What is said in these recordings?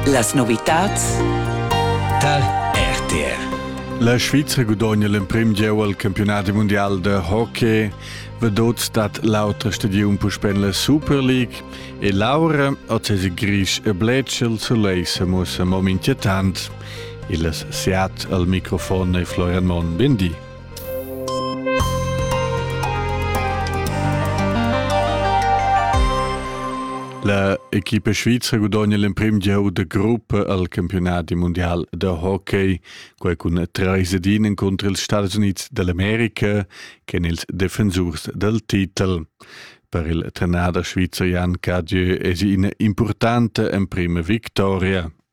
Las novitads tar RTR. La Svizra gudogna l'emprim gieu al campionat mundial da hockey. Vedot dat l'autra stagiun puspè la Super League e l'aura oz gris e bletschel suleissa mussa mo inquietant. Il Seat al microfon e Florian Monn, bindi. La equipa svizra gudogna l'emprim gieu da gruppa al campionat mundial da hockey, quai cun treis ed in encunter ils Stadis Unids dall'America ch'en ils defensurs dal titel. Per il trenader svizzer Jan Cadieu es ina importanta emprima victoria.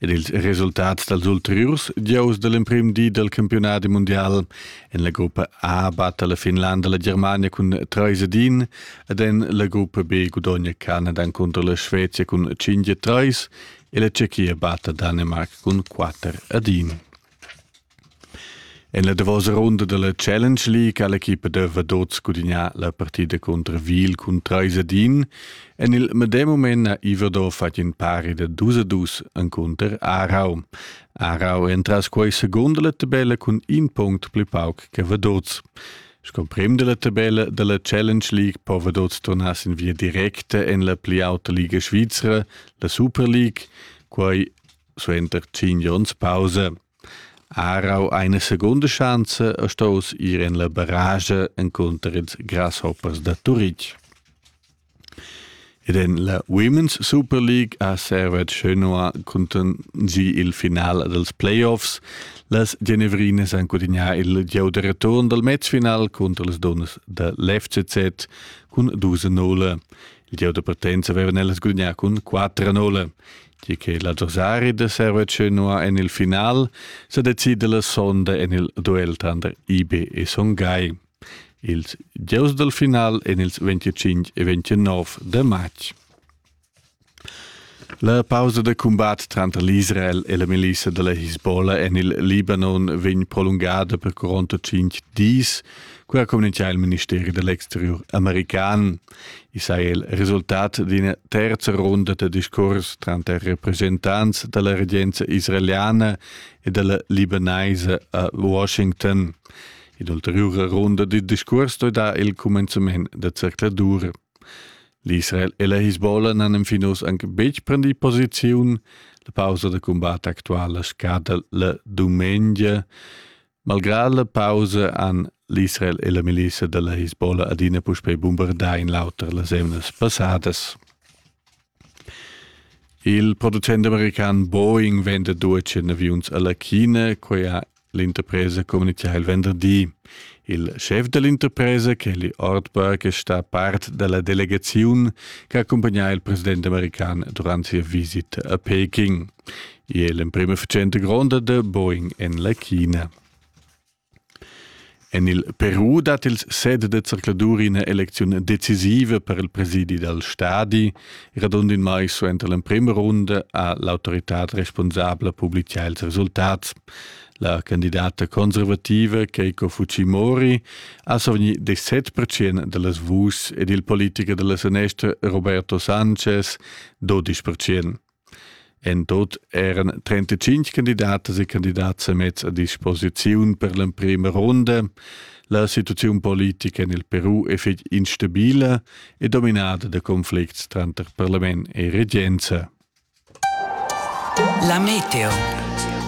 Ed ils resultats dals ulteriurs gieus da l'emprim di dal campiunadi mundial en la gruppa A batta la Finlanda la Germania cun trais ed in ed en la gruppa B gudogna Canada encunter la Svezia cun cinq e trais e la Tschechia batta Danimarca cun quatter ed in. En la davosa runda dalla Challenge League ha l'equipa da Vaduz gudignà la partida contra Wiel cun trais ad in. En il medem mument ha Iverdor fatg in pari da dus a dus encunter Aarau. Aarau è entras quei seconda la tabella cun in punct pli pauc che Vaduz. Sco prim della tabella della Challenge League po Vaduz tornar sin via directa en la pli auta liga svizra, la Super League, quai suenter 5 onns pausa. Arau eine secunda schanza e staus ir en la barrage encunter ils grasshoppers da Turitg. Ed en la Women's Super League ha Servet Genoa contingì il final dels playoffs. Las Genevrinas han gudignà il gieu de return dal matchfinal contro les donnas da l'FCZ cun 2-0. Il gieu de partenza avevan ellas gudignà cun 4-0. Di che l'adversari da Servece nua en il final sa decida la sonda en il duel tanter IB e Son Gai. Ils gieus dal final en ils 25 e 29 de matg. La pausa de combat tranter l'Israel e la milissa della Hezbollah en il Libanon vegn prolungada per 45 dis, qua comincia il ministeri dell'exterior american. I sa il resultat d'ina terza runda da discurs tranter representants da la regenza israeliana e da la libanaisa a Washington. In'ulteriura runda da discurs dà il cumenzament da zercladur. L'Israel e la Hisbollah n'han fin oz anche betg prendì posiziun. La pausa da cumbat actuala scada la dumengia. Malgrad la pausa han l'Israel e la milizia dalla Hisbollah adina puspei bumbardà in l'auter las emnas passadas. Il producent american Boeing venda duece aviuns alla China, quei ha l'interpresa communichà il venderdi. Il chef dell'interpresa, Kelly Ortberg, è sta part della delegazione che accompagna il presidente american durante sia visita a Peking. e l'emprema fatschenta gronda da Boeing en la China. En il Peru dat il set de circladur ina elecziun decisiva per il presidi dal stadi, radund in mai suenter l'emprima runda ha l'autoritad responsabla publicà ils resultats. La candidata conservativa Keiko Fujimori ha savni de 7% delles vus ed il politiker della sanestra Roberto Sanchez 12%. En tut eran trentacinc candidatas e candidats semets a disposiziun per l'emprema ronda. La situaziun politica en il Peru è fitg instabila e dominada da conflicts tranter parlament e regenza. La meteo.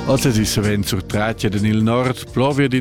Oz è savens sur Tracia en il nord, plovia d'ina